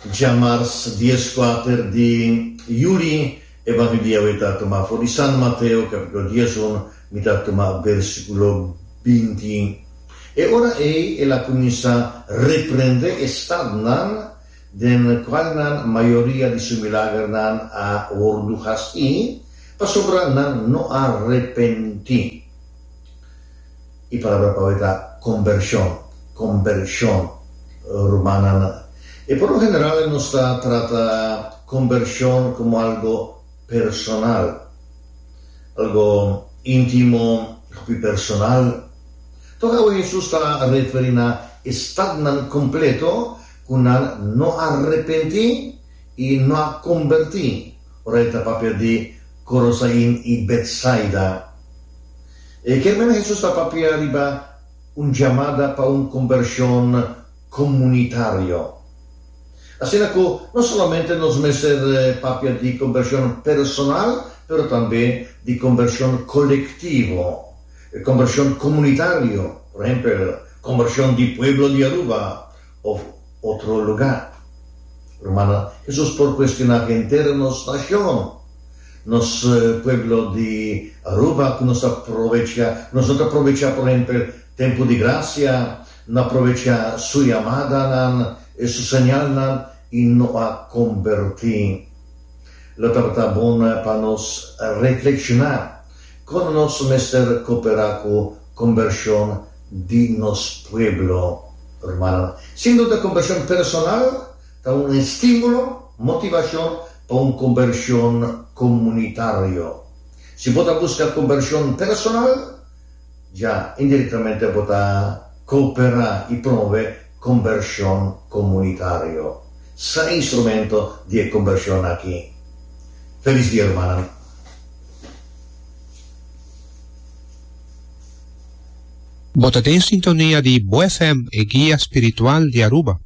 Djamars dies kuater di juli e Banbilia wei ta tuma for di San Mateo kapitulo dies un, mi ta tuma bersikulo binti. E ora ei el a kuminsá reprendé e stadnan den kual nan mayoria di su milagernan a wordu hasi, pasobra nan no a repentí. E palabra pa hoy ta combershon, combershon, rumannan. E por lo general nos ta trata combershon como algo personal, algo intimo, hopi personal. Tok awe Hesus ta referi na estadnan completo cu nan no a repenti y no a comberti ora e ta papia di Corosain y Betsaida. E kemnan Hesus ta papia riba un jamada pa un kombershon komunitario. Asina ku no solamente nos mester papia di kombershon personal pero tambe di kombershon kolektivo, kombershon komunitario, por ehempel, kombershon di pueblo di Aruba, Of otro lugar. Rumannan, Hesus por kuestioná henter nos nashon, nos pueblo di Aruba ku nos ta provechá, nos no ta provechá por ehempel tempu di grasia, no a provechá su yamadanan, su señalnan i no a kombertí. Lo tabata bon pa nos reflekshoná kon nos mester koperá ku. Combersion di nos pueblo, Rumannan. Sin duda combersion personal ta un estimulo, motivacion pa un combersion comunitario. Si bo ta busca combersion personal, ya indirectamente bo ta coopera y promove combersion comunitario. Sa e instrumento di e combersion aki. Feliz dia, rumannan. Bo ta den sintonia di Bo FM, e guia spiritual di Aruba.